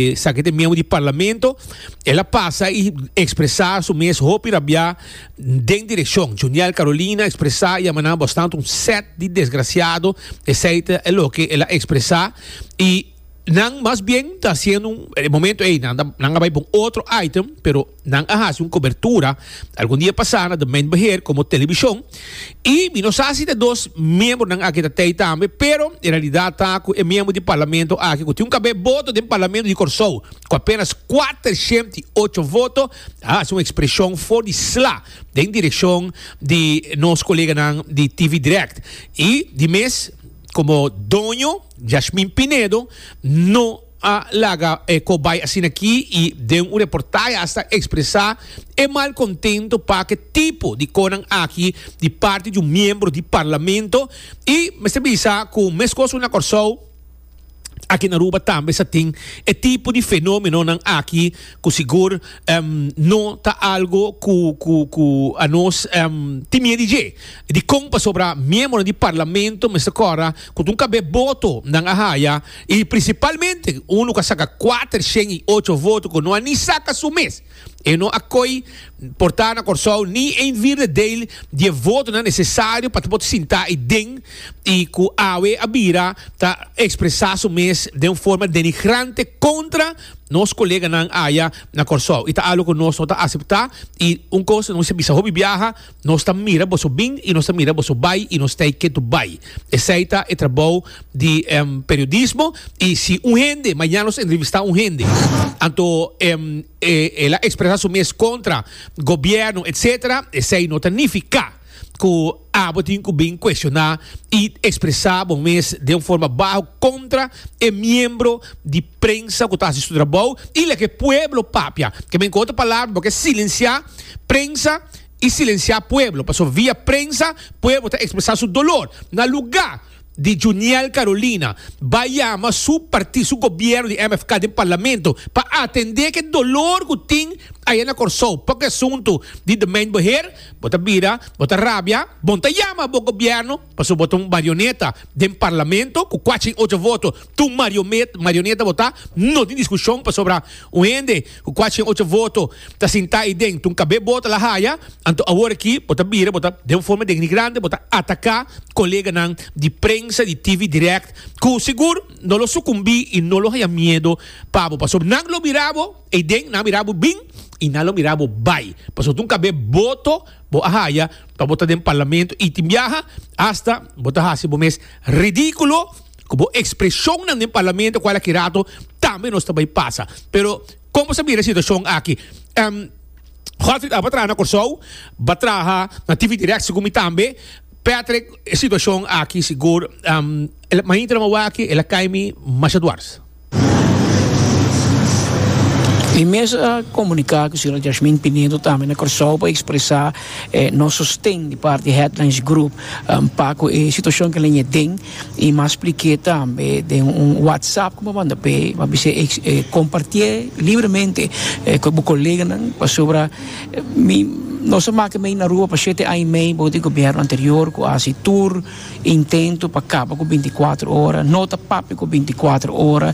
E sa que te miembro di parlamento, el a pasa y expresa su mes hopi rabia den direccion. Juniel Carolina expresa y a manan bastante un set di desgraciado eseyte e loke el a expresa y nan mas bien ta haciendo un e momento ey nan ta nan a bay pa un otro item pero Nan a hasi un kobertura algun dia pasá na demeinbeheer komo telebishon i mi no sa si ta dos miembronan aki ta tei tambe, pero e realidat ta ku e miembro di parlamento aki ku tin un kabé boto den parlamento di Kòrsou, ku apenas kuater shènt i ocho voto, a hasi un ekspreshon for di sla den direkshon di nos koleganan di TV Direct i di mes komo doño Yashmin Pinedo no a laga eko bai asina ki i den un reportahe hasta expresa e mal contento pa ke tipo di conan aki di parti di un miembro di Parlamento i mester bisa cu mescos cu na Corsou aki na Aruba tambe sa tin e tipo di fenomenonan aki cu sigur no ta algo cu cu cu a nos tin mied di dje. Dicon pasobra miembronan di Parlamento mester cora cu ta un cabe boto nan a haya I prinsipalmente un lo ka saka kuater shen i ocho voto ku no a ni saka su mes. E no a koi porta na Kòrsou ni ein vierde deil di e votonan nesesario pa ta por sinta ei den i ku awe a bira ta ekspresa su mes den un forma denigrante kontra nos koleganan aya na Kòrsou. I ta algu ku nos no ta asepta i un kos no mester bisa hopi biaha Nos ta mira boso bin y nos ta mira boso bay y nos t'ey ketu bay. Esey ta e trabou di periodismo y si un hende mañana nos entrevista un hende anto el a expresa su mes contra gobierno etc. Esey no ta nifica cu abo tin cu bin cuestiona y expresa bo mes den un forma baho contra e miembro di prensa cu ta haci su trabou y laga e pueblo papia. Keme cu otro palabra bo ke silencia prensa. i silensiá pueblo, pasobra via prensa pueblo ta ekspresá su dolor. Na lugá di Juniel Carolina bai yama su parti, su gobièrnu di MFK den parlamento pa atendé ke dolor ku tin aya na Kòrsou pa ku e asuntu di domein beheer, bo ta bira, bo ta rabia, bon ta yama bo gobièrnu. Paso bo ta un marioneta den parlamento cu cuachi y ocho voto ta un marioneta bo ta no tin discusion pasobra un hende cu cuachi y ocho voto ta sinta ahi den tun cabe bo ta la haya anto awor aki bo ta bira bo ta den un forma denigrante bo ta ataca coleganan di prensa di TV direct cu sigur no lo sucumbi y no lo haya miedo pa bo paso nan lo mira bo ahi den nan a mira bo bin y nan lo mira bo bay paso tun cabe bo to Bo a haya pa bo ta den parlamento y tin biaha hasta bo ta haci bo mes ridiculo cu bo expresionnan den parlamento cual aki rato tambe nos ta bay pasa. Pero con bo ta mira e situacion aki? Em, Godfried Abba traha na Corsou, ba traha na TV Direct segun mi tambe. Patrick, e situacion aki sigur, em, el, mainta nan awaki el a caimi masha dwars. E mesa a komuniká ku señora Yashmin Pinedo tambe na Kòrsou pa ekspresá nos sosten di parti di Headlands Group pa ku e situashon ku alen e den i mas plik'é tambe den un whatsapp ku bo a manda p'e bo a bisa e kompartié libremente ku bo koleganan pasobra mi nos a mak'é mei na Aruba pa shete aña i mei bo di gobièrnu anterior ku a hasi tur Intento pa kaba ku bintikwatro ora no ta papia ku bintikwatro ora,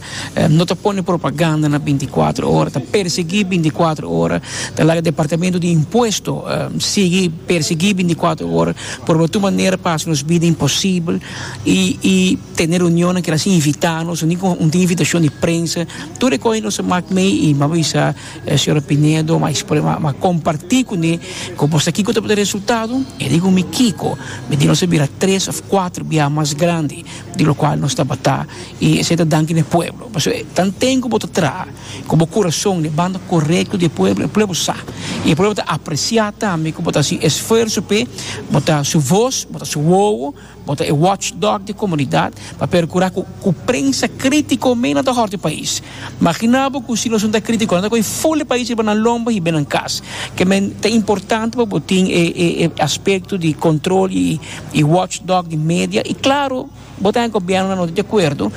no ta pone propaganda na bintikwatro ora, ta persegui bintikwatro ora, ta laga departamento di impuesto sigui persegui bintikwatro ora por bai tur manera pa hasi nos bida imposibel i i tene reunionnan kilasin invitá nos, un tin ku un tin invitashon di prensa, tur e kos ei nos a mak mei i mi a bisa. E señora Pinedo ma expone ma ma comparti cu ne como sa kico ta por e resultado e di cu mi kico mi di nos a bira tres of cuatro biaha mas grandi di lo cual nos tabata y esey ta danki n'e pueblo pasobra tan ten cu bo ta traha cu bo corazon n'e banda corecto di e pueblo e pueblo sa y e pueblo ta aprecia tambe cu bo ta haci esfuerzo p'e bo ta su voz bo ta su wowo. Bo ta e watchdog di komunidat pa perkura ku ku prensa kritiko me nan ta hòrti e pais. Magina bo ku si nos no ta kritiko nan ta kohe ful e pais riba nan lomba hib'e nan kas. Kemen ta importante pa bo tin e e aspekto di kontrol i i watchdog di media i klaro bo ta e gobièrnu nan no ta di akuerdo.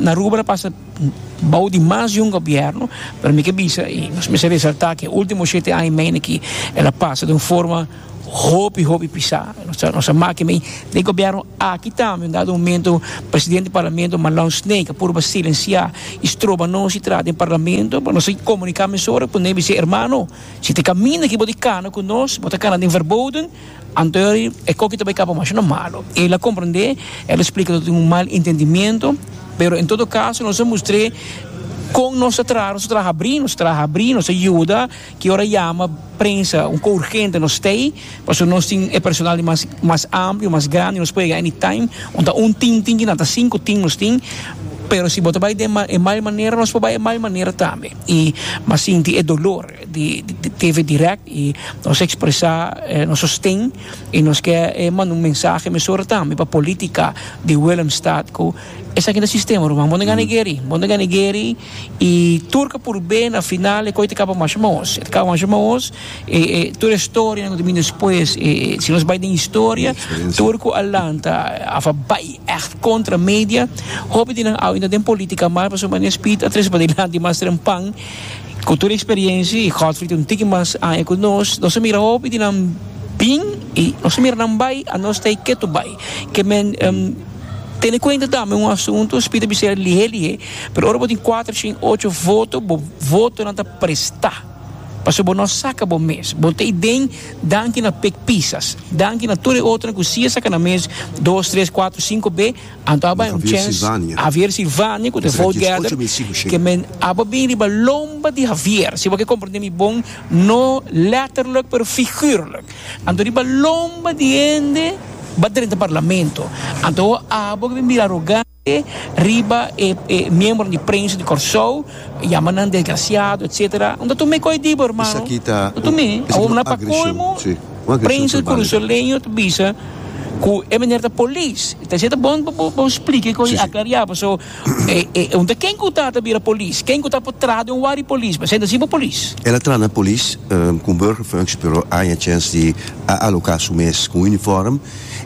Aruba ta pasa bou di mas di un gobièrnu pero mi ke bisa i nos mester resaltá ke e último shete aña i medio aki el a pasa den un forma. hopi hopi pisá nos a maki mi den gobierno aki tambe un dado momento presidente parlamento Malong Snake a purba silensiá y stroba nos y traha den parlamento nos a comunicá mesora cu nan y bis'é hermano si ta caminda aki bo di cana cu nos bo ta cana den Verboden anto e coki ta bay caba masha no malo el a comprende el a explica lo tin un mal intendimiento pero en todo caso nos a mustr'é con nos ta traha nos ta traha habrí nos ta traha habrí nos a yuda. Ki ora yama prensa un ko urgente nos stay pasobra nos tin e personal di mas mas amplio mas grandi nos por yega any time un ta un team tin kinan ta sinku team nos tin pero si bo ta bai den ma e mal manera nos por bai e mal manera tambe y mas sinti e dolor di di TV direct y nos expresa nos sosten y nos ke manda un mensahe mesora tambe pa politica di Willemstad ku esaki ta sistema ruman bo no gana Gary bo no gana Gary. Y tur ca purbé na final e coi ta caba masha maos. E ta caba masha maos e e tur e storia no ta bini despues. E e si nos bai den historia tur cu a lanta a fa bai echt contra media. Hopi di nan awe no ta den politica mas pasobra Mania Speed a trece padelanti mas trempan cu tur e experiencia y Godfrey ta un tiki mas aña cu nos. Nos a mira hopi di nan bin y nos a mira nan bai a nos ta e ketu bai. Ke men. Tene kuenta tambe un asuntu SPI ta bis'e lihé lihé, pero ora bo tin kuater shin ocho voto bo votonan ta prestá pasobra bo no saka bo mes, bo ta i den danki na pek pisas, danki na tur e otronan ku si a saka nan mes dos, tres, kuater, sinko be, anto a bai un chèns Havier Silvania ku ta vote getter ke men a bai bin riba lomba di Havier, si bo ke komprendé mi bon, no lètterlik pero figùrlik. Anto riba lomba di hende ba drenta parlamento. Anto abo ke bin bira arogante riba e e miembronan di prensa di Kòrsou, yama nan desgrasiado etsetera. No ta tum'é kò'i dibo hermano. No tum'é. Awor pa colmo prensa korosoleño ta bisa ku e meneer ta polis. Bo spliki kò'i aklariá. Enton ken ku ta ta bira polis? Ken ku ta por traha den un wak di polis? Presenta si bo polis. El a traha na polis ku un burgerfunctie pero a haña chèns di a aloká su mes ku un unifòrm.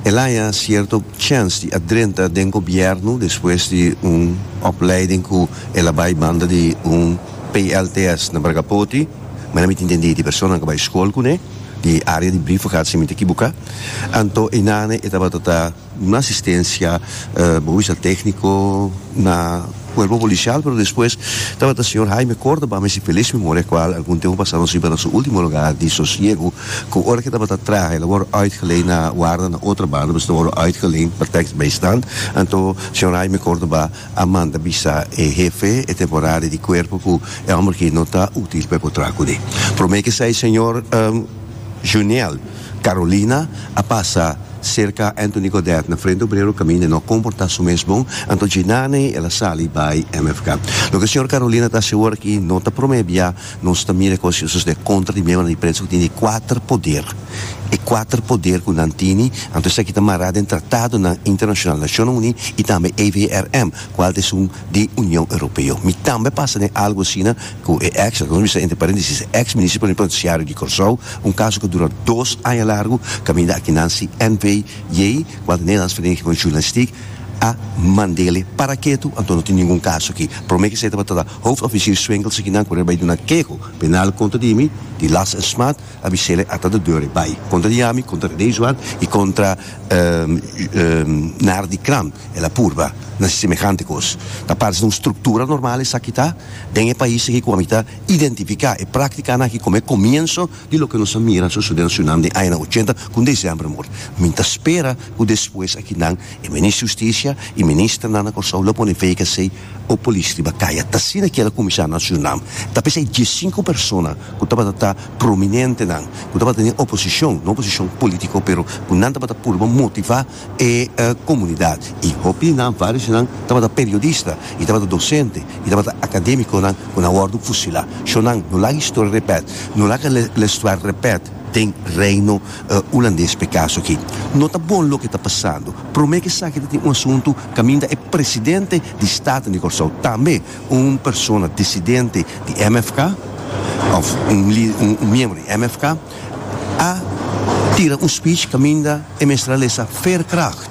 El a haña sierto chèns di a drenta den gobièrnu despues di un opleiding ku el a bai banda di un PLTS na Bragapoti. Manera mi ta intendí di personanan ku a bai skol kuné di área di Brief gehad si mi ta kibuká. Anto einane e tabata ta. Un asistencia bo bisa tecnico na cuerpo policial pero despues tabata señor Jaime Cordoba mi si feliz memoria cual algun tempo pasado nos hiba na su ultimo lugar di sosiego cu ora ke tabata traha ela worde uitgeleend na warda na otro banda pues ta worde uitgeleend pa tekst bijstand anto señor Jaime Cordoba a manda bisa e hefe e temporari di cuerpo cu e homber aki no ta util pa e por traha cune prome ke esai señor. Juniel, Carolina a pasa cerca Anthony Godet na frente obrero caminda e no comporta su mes bon, anto Djinane el a sali bay mfk. Loke señor Carolina ta haci awor aki no ta prome bia, nos ta mira e cos y sucede contra di miembro na diferencia cu tin di cuater poder. E cuater poder cu nan tini, anto esaki ta mara den tratadonan internacional Nacionnan Uni y tambe AVRM, cual ta esun di Union Europeo. Mi tambe a pasa den algo asina. ku e eks, lo ke nos bisa entre parentesis, e eks Minister Plenipotensiario di Kòrsou, un kaso ku dura dos aña largu, kaminda akinan si NV. Jay, ku anta Nederlands Vereniging van Journalistiek, a mand'ele para ketu, anto no tin ningun kaso aki. Promé ke esei tabata ta Hoofdofficier Swengels akinan ku rei bai duna keho penal kontra di mi, di last en smaad, a bisele ata de deur e bai kontra di ami, kontra Renee Zwart i kontra Nardi Kram. El a purba na si semehante kos. Ta parse ta un struktura normal esaki ta den e pais aki ku ami ta identifiká e práktikanan aki komo e komienso di loke nos a mira sosodé na Surinam den añanan ochenta ku un desèmber mor. Mi ta spera ku despues aki nan, e Minister Hustisia i Ministernan na Kòrsou lo pone fe i k'e hase'i. o polis riba kaya. Ta asina kiela kuminsá na su nam. Ta p'esei dies i sinku persona ku tabata ta prominentenan, ku tabata den e oposishon, no oposishon pólítiko, pero ku nan tabata purba motivá e komunidat. I hopi di nan, vários di nan, tabata periodista i tabata dosente i tabata akadémikonan ku nan wòrdu fusilá. Shó nan, no laga historia repèt. No laga la historia repèt den Reino Hulandes p'e kaso aki. No ta bon loke ta pasando. Promé ku esaki ta tin un asuntu kaminda e presidente di Staten di Kòrsou, tambe un persona disidente di MFK òf un lider, un miembro di MFK, a tira un speech kaminda e mester a lesa Veerkracht,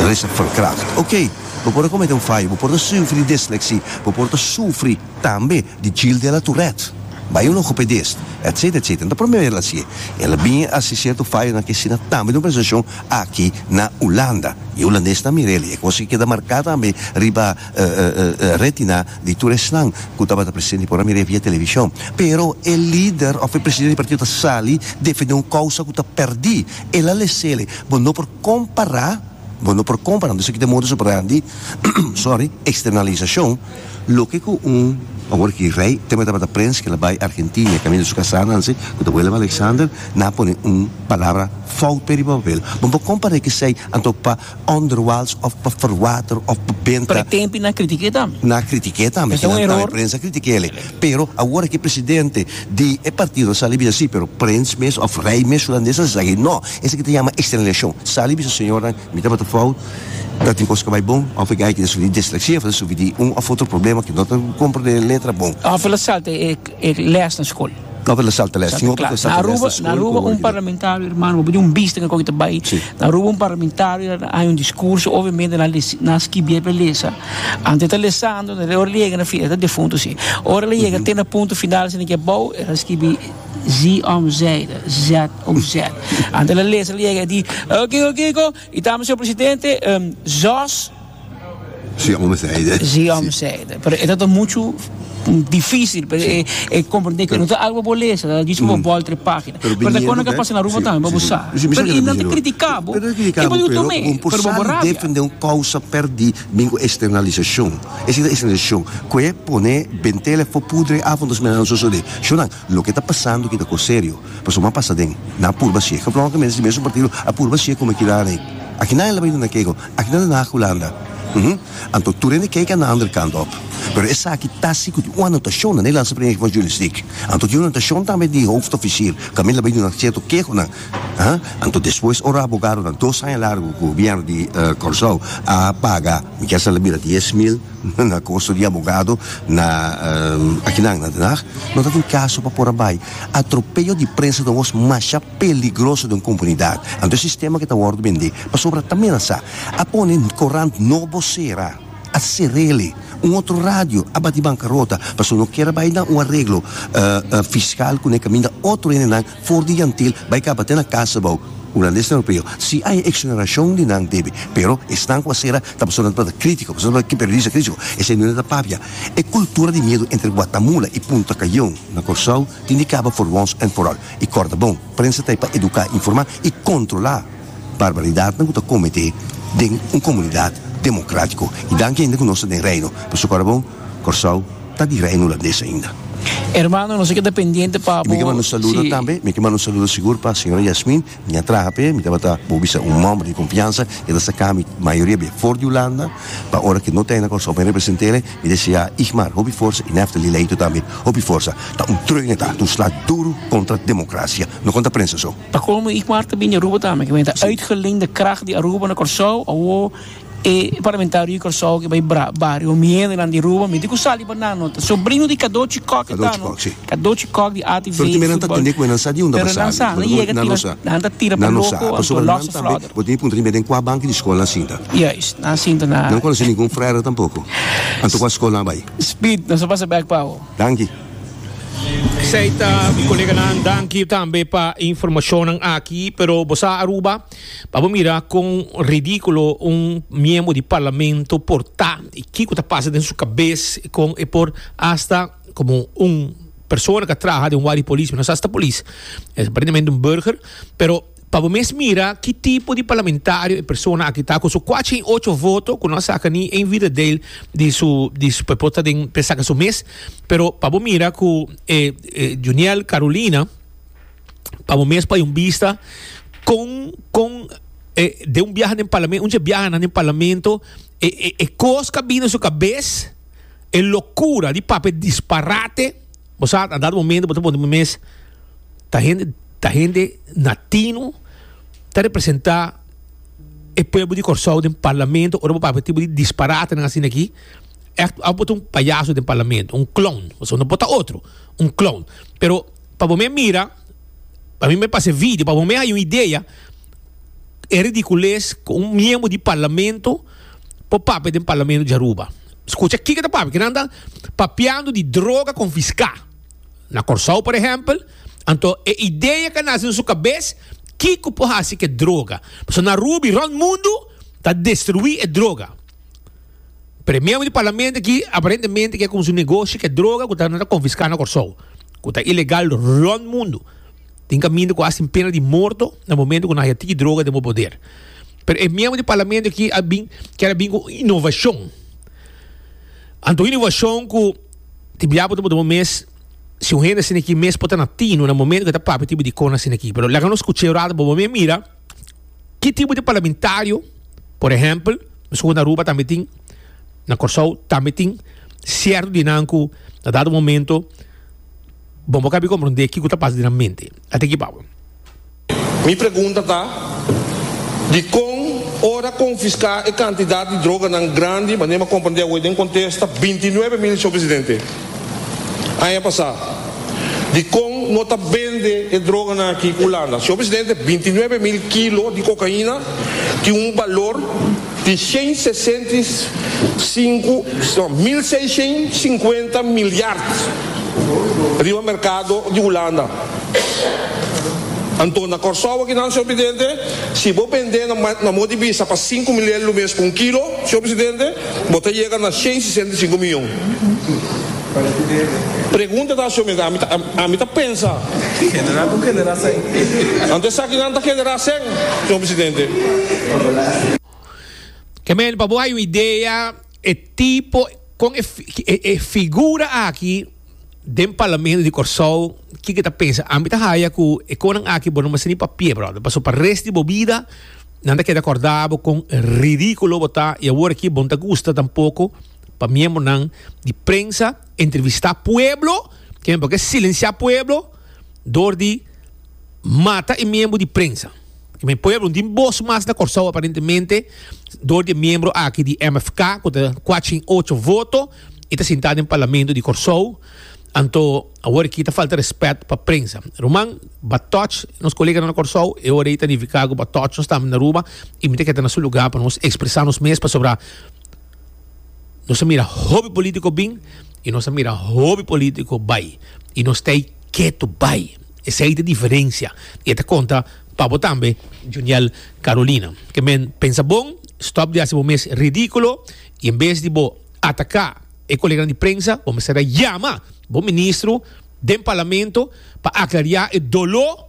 lesa verkracht. Oké, bo por a komete un faya, bo por ta sufri di desleksi, bo por ta sufri. Tambe di Gilles de la Tourette, Bayon Logopedist, etc. Etc. No ta prome bes el hasi e. El a bin hasi sierto fayonan ke asina tambe den un presentashon aki na Hulanda. I e hulandesenan a mira el i e kos ke keda marká tambe riba retina di tur esnan ku tabata presente i por a mira e via televishon. Pero e lider òf e presidente di partido ta sali defendé un kousa ku ta pèrdí. El a lesele, Bo no por kompará, bo no por kompará, entonces aki ta e moda so grandi, sorry, externalisashon. Loke ku un awor ki rei tema tabata prens kila bai Argentina i kaminda su kasá nan si ku ta Willem Alexander nan a pone un palabra foute riba papel. Bo por kon paré k'esei anto pa onderwals òf pa ferwater òf pa benta. Pre tempi nan a kritik'é tambe. Nan a kritik'é tambe. Kinan ta e prens a kritik'el e. Pero awor ki presidente di e partido a sali bisa si pero prens mes òf rei mes hulandes nan sa sa aki. No. Esaki ta yama extraliashon. Sali bisa señor nan Mi tabata fout, ta tin kos ku bai bon. Òf e guy ku ta sufri di disleksia for ta sufri di un òf otro problema ku no ta komprende e letra bon. Òf el a salta e lès na skol. Òf el a salta lès. Tin hopi ku e salta lès na skol. Na Aruba, na Aruba un parlamentario, hermano, bo pudi un bista ke kòke ta bai. Na Aruba un parlamentario a haña un diskurso, obviamente nan a nan a skibié pa e lesa. Ante e ta lesando, na ora el a yega na final, e ta defuntu si. Ora el a yega te na punto final, si nan ke bou, el a skibi, Zeer omzijde, Z. Uset. Ante la lesa la yega e di, Oh, kiko, kiko? I ta Mesior Presidente, em, Jos? Si homber zei de. Si homber zei de. Pero e ta ta muchu difícil pero e, e comprende que no ta algo bo lesa, ta dice bo bol tres página. Pero ta kono ka pasa na Aruba tambe pa bo sa. Pero i nan ta critica bo, e bo di oto mes, pero bo bo rabia. defende un causa perdi bin cu externalisacion. Esa ta externalisacion. Cu e pone bentele fo pudre afo nos mira nan sosode. Shunan. Loke ta pasando aki ta kos serio, pasobra a pasa den. Nan a purba si'e geplonkemente si mesun partido a purba si'e come kila rei. Aki nadie lo bay na keko, aki na Den Haag Hulanda. Uhm. Anto tur hende keken na ander kant op. Pero esaki ta si cu tin un anotacion na Nederlandse primer equipo journalistiek. Anto tin un anotacion tambe di hoofdofficier cu a mira lo bay duna cierto kehonan. Uhm. Anto despues ora abogadonan dos aña largo cu gobierno di Corsou a paga, mi kier sa la bira dies mil. Na kosto di abogado na akinan na Den Haag no ta tin kaso pa por a bai. Atropeyo di prensa ta wos masha peligroso den komunidat. Anto e sistema ke ta wòrdu bendé pasobra ta menasá. A pone korant No Bosera, a ser'ele. Un otro radio a bati bankarota pasobra no kier a bai na un areglo fiskal kuné kaminda otro hende nan. For di yantil bai kaba te na kasa bou unan di esnan europeo si ai exoneracion di nan debe pero esnan cu a cera ta pasobra nan tabata critico pasobra nan tabata periodista critico esei nunde ta papia e cultura di miedo entre guatamula y punta cayon na corsou tin di caba for once and for all y corda bon prensa ta ai pa educa informa y controla barbaridadnan ku ta kometé den un komunidat demokratiko. I danki hende ku nos ta den Reino. Pasobra ora bon Kòrsou ta di Reino Hulandes ainda. Hermano nos a keda pendiente pa bo. Mi ke manda un saludo tambe, mi ke manda un saludo sigur pa señora Yasmin, mi a traha p'e, mi tabata bo bisa un mòmber di konfiansa, e ta saka mi mayoria bia for di Hulanda, pa ora ke no ta na Kòrsou pa mi represente'e, mi desea Igmar hopi forsa i Neftali Leito tambe hopi forsa, ta un tròine ta, ta un slat duru kontra demokrasia, no konta prensa so. Pa colmo y cuarta bini Aruba tambe, kiba ta uitgeleend de kracht di Aruba na Corsou, awo e parlamentario di Corsou ki bay bra bario Miedonan di Aruba miti cu sali pa nan nota, sobrino di Cadochi Kok e ta no, Cadochi Kok di ATV football, pero nan ta tende cu e nan sa diunda pa sali, pero nan yega tira, nan ta tira pa loco anto a losse flodder. Bo tin e puntra riba den cua banki di scolnan sinta? Juist, nan sinta na. Nan conoce ningun frere tampoco, anto cua scolnan bay? Speed, nan sa pasa bek pa awo. Danki. Esei ta mi koleganan danki tambe pa informashonnan aki pero bo sa Aruba pa bo mira kon ridikulo un miembro di parlamento por ta i kiko ta pasa den su kabes i kon e por asta komo un persona ku a traha den wak di polis mi no sa si ta polis es aparentemente un burger pero. Pa bo mes mira ki tipo di parlamentario e persona aki ta, ku su kua cien ocho voto, ku no a saka ni ein vida del di su, di su pepot ta den, p'e saka su mes. Pero pa bo mira ku e Juniel Carolina, pa bo mes poi un bista kon, kon e den un biaha den parlamen, un dje biaha nan den parlamento, e, e, e kos ku a bini na su kabes, e lokura di papia disparate, bo sa, a dado momento bo ta pone bo mes. ta hende ta hende natino ta representa e pueblo di Kòrsou den parlamento ora bo papia e tipo di disparatenan asina aki ect abo bo ta un payaso den parlamento un clown pasobra no por ta otro un clown pero pa bo me mira pa mi me pasa e video pa bo me haya un idea e ridicules cu un miembro di parlamento por papia den parlamento di Aruba scucha kiko ta papia kinan ta papiando di droga confisca. Na Kòrsou, por ehèmpel, anto e idea ka nasi na su kabes kiko por hasi ku e droga. Pasobra na Aruba i rònt mundu ta destruí e droga. Pero e miembro di parlamento aki aparentemente ke kuminsá un negoshi ku e droga ku ta na konfiská na Kòrsou, ku ta ilegal rònt mundu. Tin kaminda ku hasi pena di morto na momento ku nan haya tiki droga den bo poder. Pero e miembro di parlamento aki a bin kèr a bin ku un inovashon. Anto un inovashon ku. Di biapo ta por duna un mes, si un hende asina aki mes por ta na tinu na momento cu e ta papia e tipo di cona asina aki. Pero laga nos scucha e rato bobo mira mira ki tipo di parlamentario, por ehempel, mescua cu na Aruba tambe tin, na Corsou tambe tin cierto di nan cu na dado momento bo no cabi comprende kico ta pasa den nan mente. Ata aki papia. Mi pregunta ta, Dikon ora konfiská e kantidat di droganan grandi manera m'a komprendé awe den kontesta binti nuebe mil, Señor Presidente? Aña pasá dikon no ta bende e droganan aki Hulanda, Señor Presidente, binti nuebe mil kilo di kokaina tin un balor. Di shen sesenta i sinku, no, mil seishen sinkuenta milyard riba merkado di Hulanda. Anto na Kòrsou akinan, señor presidente, si bo bend'é na ma, na modi bisa pa sinku milyard lumes pa un kilo, señor presidente, bo ta yega na shen sesenta i sinku miyon. Pregunta ta asio mes, ami ta pensa. Genera cu genera sen. Anto esaki nan ta genera sen, señor presidente. Kemel, pa bo hay un idea e tipo con e figura aki den Parlamento di Corsou kiko e ta pensa? Ami ta haya cu e conan aki bo no mester ni papia brother paso pa rest di bo bida nan ta keda corda bo con ridiculo bo ta y awor aki bo no ta gusta tampoco. pa miembronan di prensa entrevistá pueblo, kimen por ke silensiá pueblo dor di mata e miembro di prensa. Kimen pueblo no tin bos mas na Kòrsou aparentemente dor di e miembro aki di MFK ku ta kwachin ocho voto i ta sintá den parlamento di Kòrsou. Anto awor aki ta falta rèspèt pa prensa. Ruman, ba tòch nos koleganan na Kòrsou, e ora ei ta nifiká ku ba tòch nos tambe na Aruba i mi ta keda na su lugá pa nos ekspresá nos mes pasobra, Nos a mira hopi politico bin y nos a mira hopi politico bay. Y nos ta ey keto bay. Esey ta diferencia. Y e ta conta pa bo tambe Juniel Carolina. Ke men pensa bon, stop di haci bo mes ridiculo y en bes di bo ataca e coleganan di prensa, bo mester a yama bo ministro den parlamento pa aclaria e dolo.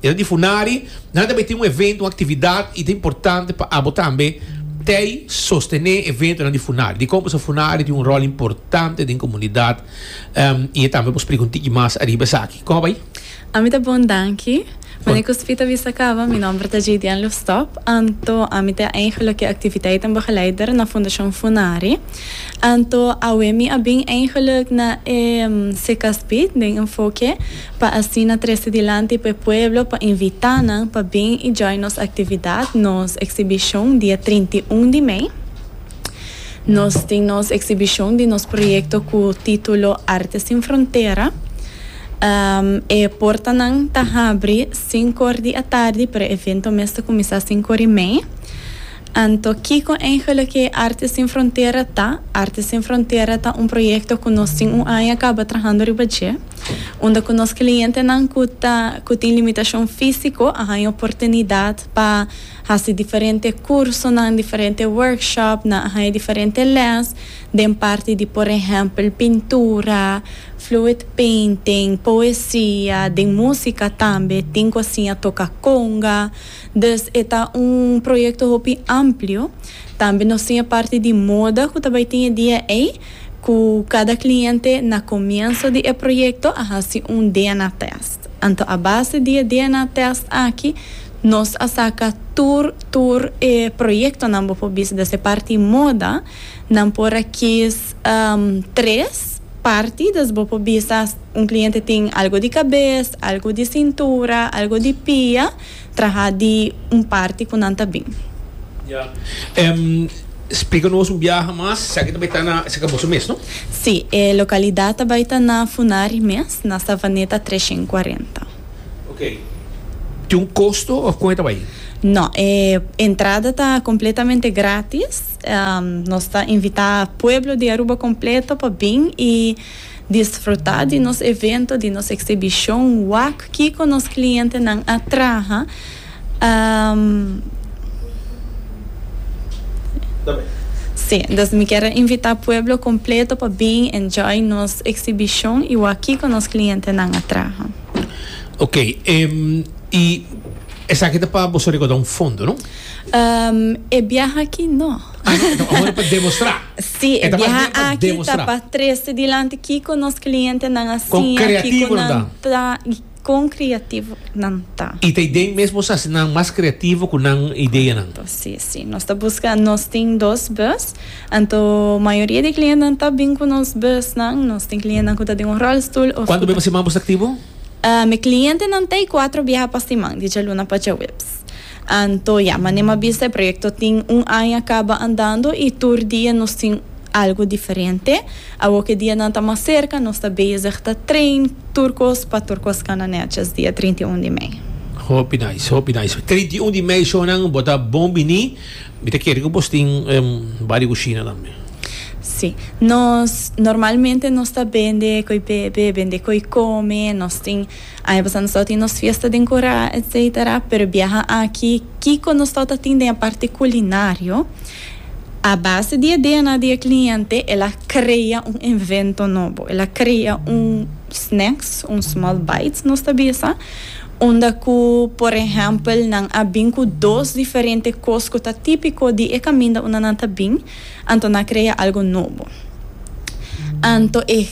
Dina di funari nan tambe tin un evento, un actividad y ta importante pa abo tambe tey sostene eventonan di funari. Dicon pasobra funari tin un rol importante den comunidad em y e tambe por splica un tiki mas ariba esaki. Como bay? Ami ta bon danki. Mane ku Spita bisa kaba, mi nomber ta Jadian Lustop. Anto ami ta eindig loke activiteiten begeleider na Fundacion Funari. Anto awe mi a bin eindiglik na e CKSPID den enfoke. pa asina trese dilanti pa e pueblo pa invita nan pa bin y join nos actividad, nos exhibición dia trinta i un di mei. Nos tin nos exhibición di nos proyecto cu titulo Arte sin frontera. E portanan ta habri sinku or di atardi pero e evento mes ta cuminsa sinku or y mei. Anto kiko eingelo ke Artes Sin Frontera ta? Artes Sin Frontera ta un proyekto ku nos tin un aña kaba trahando riba dje, unda ku nos klientenan ku ta ku tin limitashon físiko a haña oportunidat pa hasi diferente kursonan, diferente workshop, nan a haña diferente lès den parti di por ehèmpel pintura, fluid painting, poesia, den músika tambe tin ku a siña toka konga. Dus e ta un proyekto hopi amplio. Tambe nos tin e parti di moda ku ta bai tin e dia ei, ku kada kliente na komienso di e proyekto a hasi un DNA test. Anto a base di e DNA test aki nos a saka tur tur e proyektonan bo por bisa. Dus e parti moda nan por a kis tres parti, dus bo por bisa un kliente tin algo di kabes, algo di sintura, algo di pia. traha di un parti cu nan ta bin. Ya. Em splica nos un biaha mas. Esaki ta bai ta na, esaki boso mes no? Si, e localidad ta bai ta na Funari mes, na Savaneta trecen y cuarenta. Ok. Tin un costo of con e ta bai? No, e entrada ta completamente gratis. Nos ta invita pueblo di Aruba completo pa bin y. Disfrutá di nos evento, di nos eksibishon, wak kiko nos klientenan a traha. Sí, dus mi kier a invitá pueblo kompleto pa bin enjoy nos eksibishon i wak kiko nos klientenan a traha. Ok, i esaki ta pa boso rekauda un fondo, no? E biaha aki no. Ah, no, e ta pa demostrá. Sí, e biaha aki ta pa trece dilanti kiko nos clientenan a siña, kiko nan ta i kon creativo nan ta. I ta idee mesmo sa si nan mas creativo ku nan ideanan. Correcto, sí, sí. Nos ta buska, nos tin dos bus, anto mayoria di clientenan ta bin ku nos busnan. Nos tin clientenan ku ta den un rolstoel of. Kuantu bes pa siman bo ta aktivo? Mi clientenan ta e cuatro biaha pa siman, di djaluna pa djaweps. Anto ya, manera m'a bisa e proyekto tin un aña kaba andando i tur dia nos tin algu diferente. Awor ku e dianan ta mas serka, nos ta bezig ta train tur kos pa tur kos kana nètjes dia trinta i un di mei. Hopi nice, hopi nice. Trinta i un di mei shownan, bo ta bon bini. Mi ta kere ku boso tin bar di kushina tambe. Sí. Nos normalmente nos ta bende koe bebe, bende koe kome, nos tin. Aña pasá nos tau tin nos fiesta den Corá etc. Pero biaha aki kiko nos tau ta tin den e parti culinario? A base di e DNA di e cliente el a crea un invento nobo, el a crea un snacks, un small bites nos ta bisa, unda cu por ehempel nan a bin cu dos diferente cos cu ta tipico di e caminda unda nan ta bin. Anto na crea algo nobo. Anto e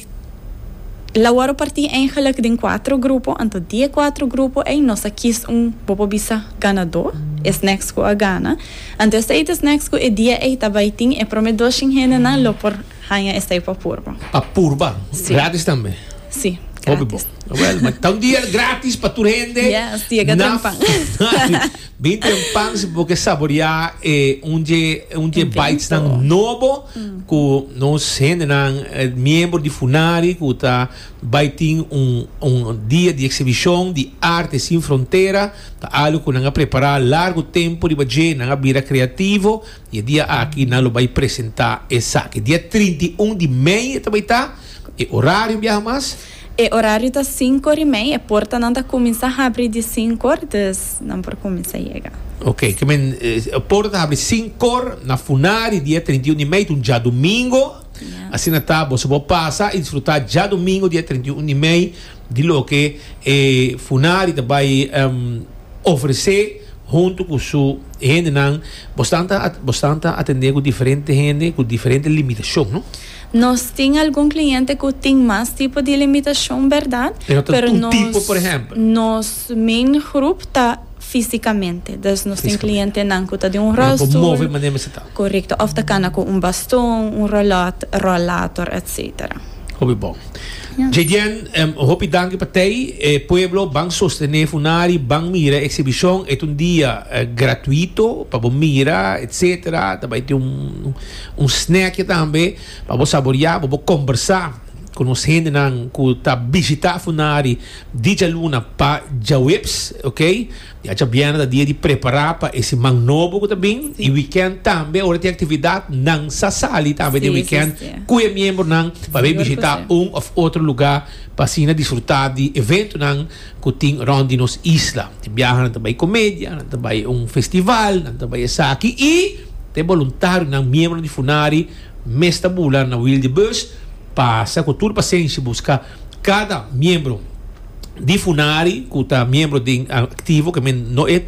la worde parti eigenlijk den cuatro grupo, anto di e cuatro grupo ey nos a kies un, bo por bisa, ganado, e snacks cu a gana. Anto esey ta snacks cu e dia ey ta bay tin e prome dos chin hendenan lo por hanja esey pa purba. Pa purba. Gratis tambe? Si, gratis. Hopi bo. Well, ma ta un dia gratis pa tur hende. Yes, ti e ga drenk pan. Bin tin un pan si bo ke saboreá e un dje un dje bites nan nobo ku nos hendenan miembro di Funari ku ta bai tin un un dia di eksibishon di Arte Sin Frontera ta algu ku nan a prepará largu tempu riba dje nan a bira kreativo i e dia aki nan lo bai presentá esaki dia trinta i un di mei ta bai ta e orario biaha mas. E orario ta sinkor i mei. E portanan ta kuminsá habri di sinkor, dus nan por kuminsá yega. Ok, ke men e porta ta habri sinkor na funá di dia trinta i un di mei, ta un djadumingo. Asina ta boso por pasa i disfrutá djadumingo dia trinta i un di mei di loke e funá di ta bai ofresé huntu ku su hendenan. Boso ta boso ta atendé ku diferente hende ku diferente limitashon, no? Nos tin algun kliente ku tin mas tipo di limitashon, bèrdat? E no ta tur tipo, por ehèmpel. Nos main grup ta físikamente. Des nos tin klientenan ku ta den un ròlstul. Ku no por move manera mester ta. Korekto. Òf ta kana ku un baston, un ròlòt, ròlator, etsetera. Hopi bon. JDN, hopi danki pa tei. E pueblo ban sostené funari, ban mira e eksibishon. E ta un dia gratuito pa bo mira, etsetera. Ta bai tin un. Un snackje tambe pa bo saboria, pa bo kombersá ku nos hendenan ku ta bishitá funari di djaluna pa djaweps, ok. Yacha biènè ta dia di prepará pa e siman nobo ku ta bin i wikènt tambe ora tin aktividat nan sa sali tambe den wikènt ku e miembronan pa bai bishitá un òf otro lugá pa asina disfrutá di eventonan. ku tin rònt di nos isla. E biaha nan ta bai komedia, nan ta bai un festival, nan ta bai esaki i ta e boluntarionan, miembronan di Funari, mes ta bula na Wil di Bus pa sa ku tur pasenshi buska kada miembro di Funari ku ta miembro den aktivo, ke men no e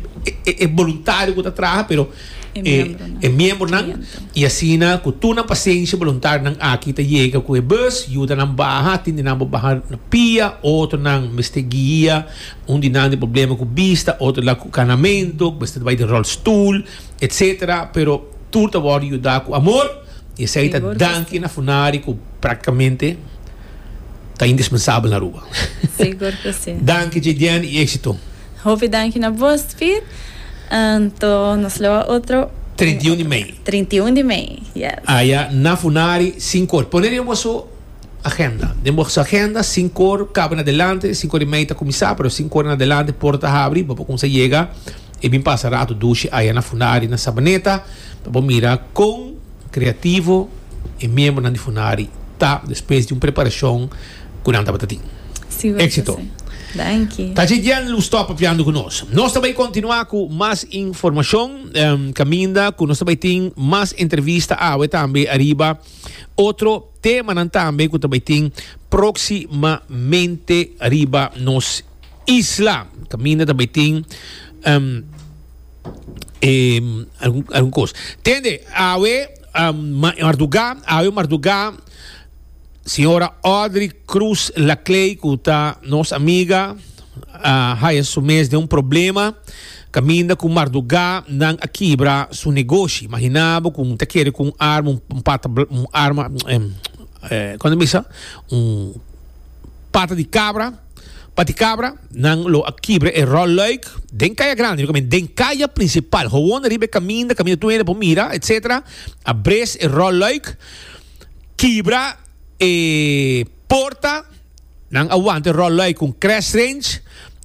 boluntario ku ta traha pero. e, e miembronan y asina cu tur nan pasensia boluntarionan aki ta yega cu e bus yuda nan baha tin di nan bo baha na pia otro nan mester guia un di nan di problema cu bista otro la cu canamento cu mester bai den rolstoel etc pero tur ta worde yuda cu amor y esey ta danki na funari cu practicamente ta indispensabel na Aruba danki JDN y exito. Hopi danki na bos Pit. Anto nos lo a otro. Trinta i un di mei. Trinta i un di mei, yes. Aya na funari sinku or. Pone den boso agenda. Den boso agenda sinku or kaba na delante, sinku or i mei ta kuminsá, pero sinku or na delante por ta habri bo por kumsa yega i bin pasa ratu dushi aya na funari na Sabaneta pa bo mira kon kreativo e miembronan di funari ta despues di un preparashon. ku nan tabata tin éksito. Ta dje djen lu stòp fiando ku nos. Nos ta bai kontinuá ku mas informashon kaminda ku nos ta bai tin mas entrevista awe tambe ariba otro temanan tambe ku ta bai tin próksimamente riba nos isla kaminda ta bai tin e algun kos. Tende awe mardugá awe mardugá. Señora Audrey Cruz Laclay cu ta nos amiga a haya su mes den un problema caminda cu marduga nan a kibra su negoshi. Imagina bo cu ta kere cu un arma, un pata, un arma, con ta bisa? Un pata di cabra, pati cabra, nan lo a kibra e rol luik den caya grandi, mi comenta, den caya principal, gewoon riba e caminda, caminda tunede, bo mira, etcetera, a bres e rol luik. kibra e porta, nan a wanta e rol loy ku un crash wrench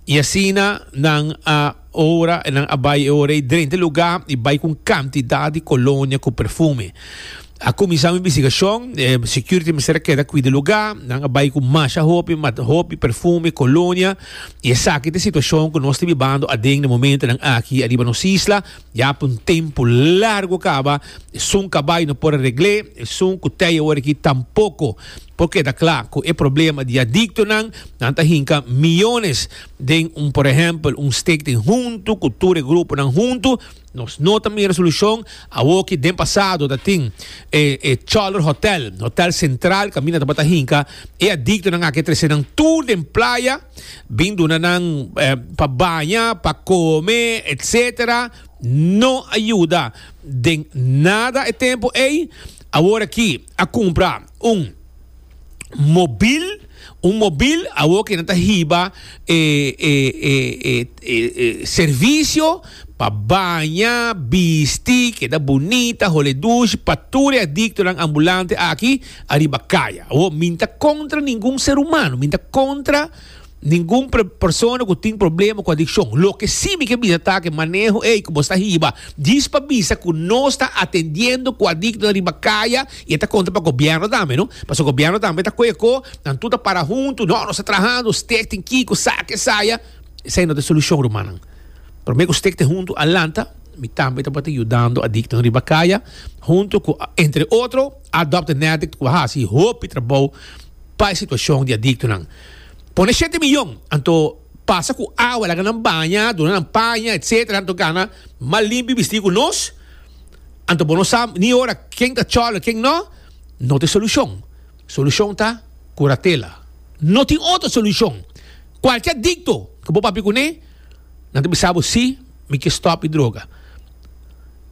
i asina nan a ora nan a bai e ora ei drenta e lugá i bai ku un kantidat di kolonia ku perfume. A kuminsá un investigashon, e security mester a keda kuida e lugá, nan a bai ku masha hopi mata hopi perfume, kolonia i esaki ta e situashon ku nos ta bibando aden na momentunan aki ariba nos isla, Ya pa un tempu largu kaba esun kabai no por a regl'é, esun ku tei awor aki tampoko. Por keda kla ku e problema di adiktonan, nan ta hinka miyones den un por ehèmpel un stek den huntu ku tur e gruponan huntu. Nos no ta mira solushon awor ki den pasado ta tin e e Chòler Hotèl, Hotèl Sentral kaminda tabata hinka e adiktonan aki a trese nan tur den playa. Bin duna nan pa baña, pa kome, etc. No a yuda den nada e tempu ei. Awor aki a kumpra un mobil, un mobil awor ke nan ta hiba e servisio pa baña, bisti, keda bunita, hole dushi pa tur e adiktonan ambulante aki. Ariba kaya. Awor, mi n'ta kontra ningun ser humano, mi n'ta kontra ningun persona ku tin problema ku adikshon. Loke si mi ke bisa ta ku e maneho ei ku bo sta hiba djis pa bisa ku nos ta atendiendo ku adiktonan riba kaya i e ta kontra pa gobièrnu tambe, no? Pasobra gobièrnu tambe ta koyoko, nan tur ta para huntu, no, nos ta trahando, stèk tin kiko, saki e saya. Esei no ta e solushon, rumannan. Promé ku stèk ta huntu a lanta, mi tambe tabata yudando adiktonan riba kaya, huntu ku, entre otro. Adopt an Addict cu a haci hopi trabou pa e situacion di adictonan. Pone shete miyon, anto pasa cu awa laga nan baña, duna nan paña, etc. Anto gana mal limpi bisti cu nos. Anto bo no sa ni ora ken ta cholo, ken no. No tin solucion. Solucion ta curatela. No tin otro solucion. Cualke adicto cu bo papia cune, nan ta bisa bo si mi kier stop di droga.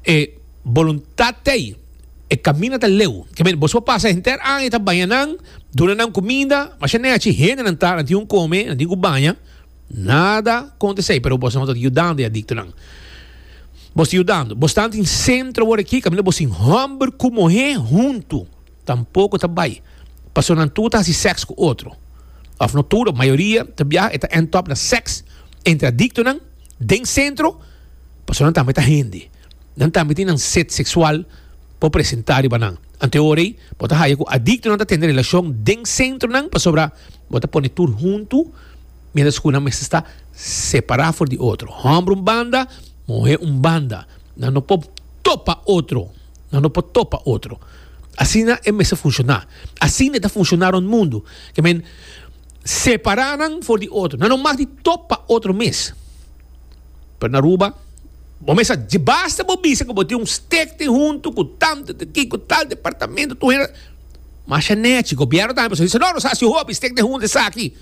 e boluntat t'ei, e kaminda ta leu. Ke men, boso pasa henter aña ta baña nan, duna nan kuminda, ma sha nea chi hendenan ta, nan tin un kome, nan tin ku baña, nada kontes'ei, pero boso no ta yudando e adiktonan. Boso ta yudando. Boso ta anto den sentro awor aki kaminda boso tin hòmber ku muhé huntu. Tampoko ta bai pasobra nan tur ta hasi sèks ku otro. Òf no tur, mayoria ta biaha e ta ènt òp na sèks entre adiktonan den sentro pasobra nan tambe ta hende. Nan tambe tin nan set seksual por presentá riba nan. Ante ora ei bo ta haña ku adiktonan ta tende relashon den sentronan pasobra bo ta pone tur huntu miéntras ku nan mester sta separá for di otro. Hòmber un banda, muhé un banda. Nan no por topa otro. Nan no por topa otro. Asina e mester funciona. Asina e ta funciona rond mundu. Ke men separa nan for di otro. Nan no mag di top pa otro mes. Pero na Aruba bo mes sa dje basta bo bisa ku bo tin un stek tin huntu ku tantu te kiko tal departamento tur hende masha nechi. Gobièrnu tambe pasobra e bisa no nos a hasi hopi stek den huntu esaki.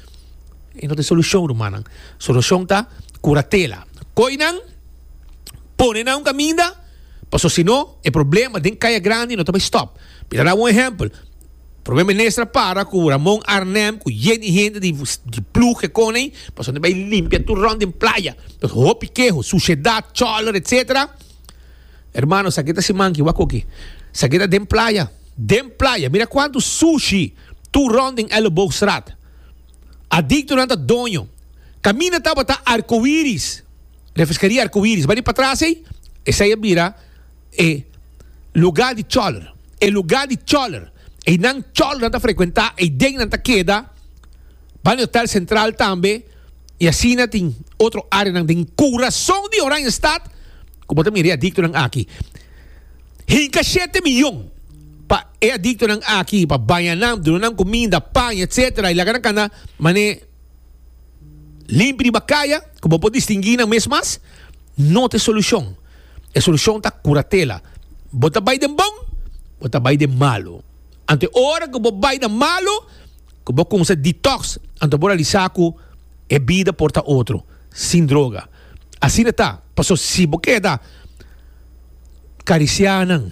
E no ta solushon rumannan. Solushon ta kuratela. Koi nan, pone nan un kaminda. Paso si no, e problema den Kaya Grandi no ta bay stop. Mi ta dal un ehempel. Prome Minister a para cu Ramon Arnhem cu yen di hende di di ploeg ke con ey paso nan bay limpia tur rond den playa. Paso hopi keho, suciedad, choler etc. Hermano sa ke ta si manki wak oke. Sa ke ta den playa, den playa. Mira cuanto sushi tur rond den Elleboogstraat. Adicto nan ta doño. Camina tabata arcoiris. Den e Fiscaria Arcoiris. Bani patras ey, esey a bira e lugar di choler. E lugar di choler. Eynan cholernan ta frecuenta, ey den nan ta keda. Bani Hotel Central tambe. Y asina tin otro areanan den curazon di Oranjestad, cu bo ta mira e adictonan aki. Hinca shete miyon pa e adictonan aki, pa bañanan, dunanan cuminda, pan, etcetera y laga nan cana mane. Limpi di bakaya ku bo por distingui nan mes mas no ta e solushon. E solushon ta kuratela. Bo ta bai den bon, bo ta bai den malu. Anto e ora ku bo bai na malu ku bo kumsa detox, anto bo realisa ku e bida por ta otro sin droga. Asina ta, paso si bo keda karisiá nan,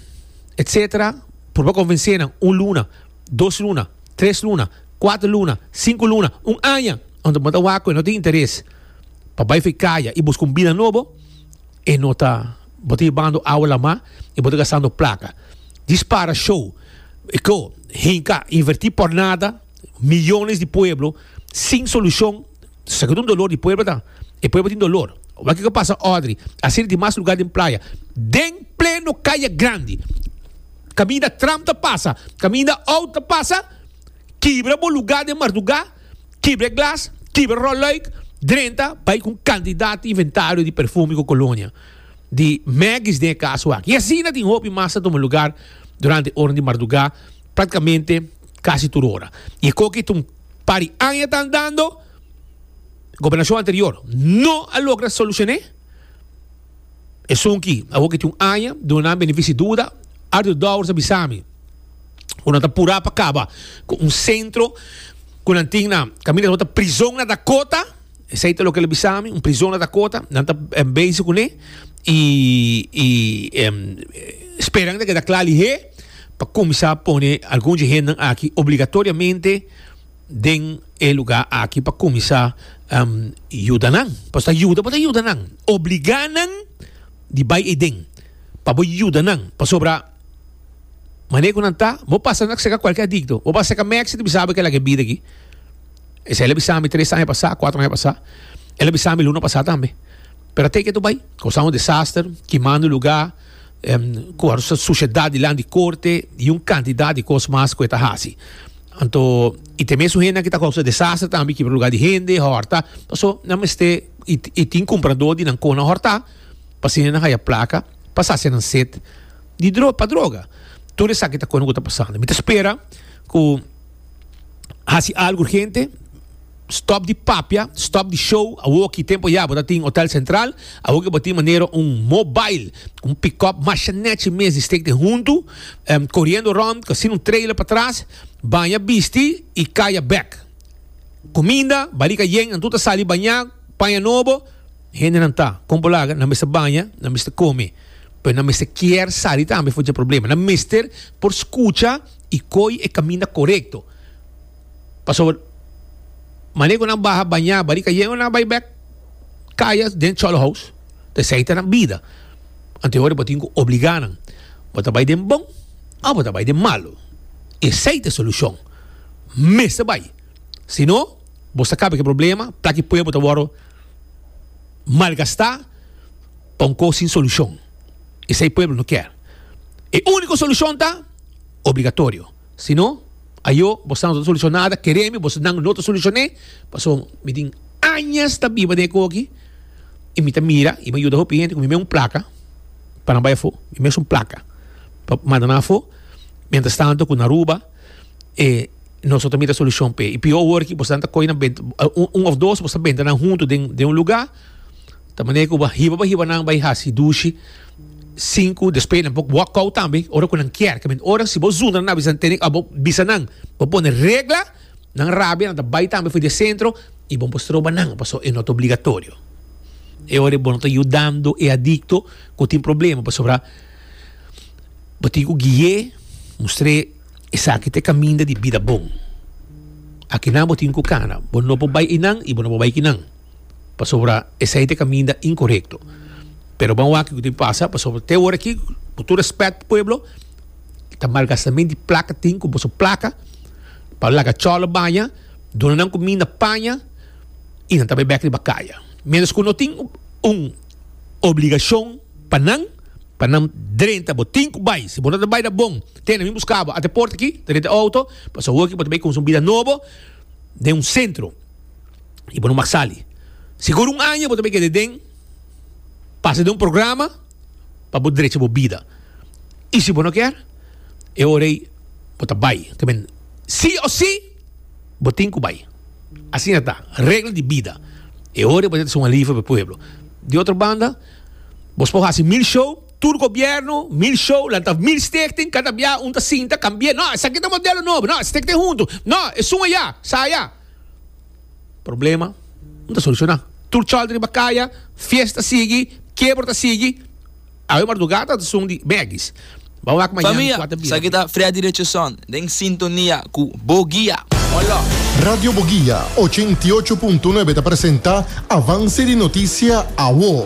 etcetera, purba konvensé nan un luna, dos luna. Tres luna, kuater luna, sinku luna, un aña, unda bo ta wak ku e no tin interes pa bai fi kaya i buska un bida nobo, e no ta, bo ta yebando awa lamá i bo ta gastando plaka. Dispara show, eko, hinka, invertí por nada, miyones di pueblo sin solushon. Segun un dolor di pueblo ta. E pueblo tin dolor. Wak kiko pasa Audrey. Asi di dimas lugar den playa. Den pleno kaya grandi. Kaminda tram ta pasa. Kaminda out ta pasa. Kibra bo lugar den marduga. Kibra e glas. Kibra rolluik. Drenta bai ku un kantidat di inventario di perfume ku kolonia. Di Maggie's den e kas wak. I asina tin hopi mas ta tuma lugar durante e ora di marduga. Praktikamente. Casi tur ora. Y e coki ta un par di aña ta andando, gobernacion anterior no a logra solucione esun ki awor ki tin un aña duna nan benefici duda. Arthur Dowers a bisa mi cu nan ta pura pa caba cu un centro cu nan tin na caminda ta word ta Prizon na Dakota. Esei ta loke el a bisa mi, un prizon a ta kota, nan ta bezi kuné i speran ta keda kla lihé pa kuminsá pone algun dje hendenan aki obligatoriamente den e lugá aki pa kuminsá yuda nan. Pasobra ta yuda bo ta yuda nan, obligá nan di bai ei den pa bo yuda nan, pasobra mané ku nan ta bo pasa nan ta seka kualke adikto, bo pasa seka mèkster ta bisa bo ke laga e bida aki. Esei el a bisa mi tres aña pasá, kuater aña pasá. El a bisa mi luna pasá tambe. Pero a teken ta bai. Kosa un desaster, kimando lugá, ku a sushedat dilanti di korte i un kantidat di kos mas ku e ta hasi. Anto, i te mesun hendenan ku ta kousa desaster tambe, kibra lugá di hende, hòrta. Pasobra nan mester, i i tin kumpradó di nan kon nan hòrtá pa asina nan haya plaka pa sacia nan set di dro pa droga. Tur esaki ta kosnan ku ta pasando. Mi ta spera ku. hasi algo urgente. Stop di papia, stop di show. Awoki tempo ya bo tin Hotel Central. Awoki bo tin manera un mobile, un pick-up mashanechi mes di steek den huntu. Um, corriendo rond, sin un trailer patras. Baña bisti y caya bek. Cuminda, balica yen, nan tur ta sali baña, paña nobo. Hendenan ta, con bo laga, nan mester baña, nan mester come. Pero nan mester kier sali tambe for dje problema. Nan mester por scucha. i koi e kaminda korekto. Pasobra mane ku nan baha bañá bari kayendo nan a bai bèk kaya den chòlhouse, ta esei ta nan bida. Anto yori bo tin ku obligá nan. Bo ta bai den bon òf bo ta bai den malu. Esei ta e solushon. Mester bai. Si no, bo sa kaba ku e problema, plaka i pueblo ta wòrdu malgastá pa un kos sin solushon. Esei pueblo no kier. E úniko solushon ta. obligatorio si no ayo bo sa no ta solucion nada keremi bo esnan no ta solucion'e paso mi tin añas ta biba den e koe aki y mi ta mira y mi a yuda hopi hende ku mi mes un placa pa nan bai afo mi mes un placa pa manda nan afo mientras tanto ku nan Aruba e nos ta mira solucion p'e y peor awor aki bo esnan ta coge nan benta un of dos bo esta benta nan hunto den un lugar Ta manera ku bo hiba bo hiba nan bai hasi dushi, sinku, despues nan por wak out tambe ora ku nan kier. Ke men ora si bo zunda nan a bisa, tene abo bisa nan. Bo pone regla, nan rabia, nan ta bai tambe for di e sentro i bo no por stroba nan pasobra e no ta obligatorio. E ora ei bo no ta yudando e adikto ku tin problema pasobra bo tin ku guie, mustr'é esaki ta e kaminda di bida bon. A kinan bo tin ku kana. Bo no por bai einan i bo no por bai kinan. pasobra esei ta e kaminda inkorekto. Pero bo a wak kiko tin pasa pasobra te ora aki, ku tur rèspèt pa pueblo, ta malgastamento di plaka tin ku boso plaka pa laga chòlo baña, duna nan kuminda paña i nan ta bai bèk riba kaya. Ménos ku no tin un obligashon pa nan, pa nan drenta bo tin ku bai. Si bo no ta bai ta bon, tene mi buska bo at'e porta aki, drenta e outo, pasobra bo ta bai konsumí bida nobo den un sentro. y bo no mag sali. Sigur un aña bo ta bay keda den, pasa den un programa pa bo drecha bo bida. Y si bo no kier, e ora ey bo ta bay. Ta bay si o si bo tin cu bay. Asina ta, regla di bida. E ora ey bo ta haci un alivio pa e pueblo. Di otro banda, bos por haci mil show, tur gobierno, mil show, lanta mil stichting, cada bia un ta sinta cambia, no, esaki ta modelo nobo, no, stichting hunto, no, esun aya, sa aya. Problema no ta solucioná. Tur chòl ta riba kaya, fiesta ta sigui, kebra ta sigui. Awe mardugada ta sun di bègis. Bo a wak mañana Famia, kuater bira. Esaki ta Freddy Richardson den sintonia ku Bo Guia. One love. Radio Boguia ochenta i ocho punto nuebe ta presenta Avance di Noticia Awo.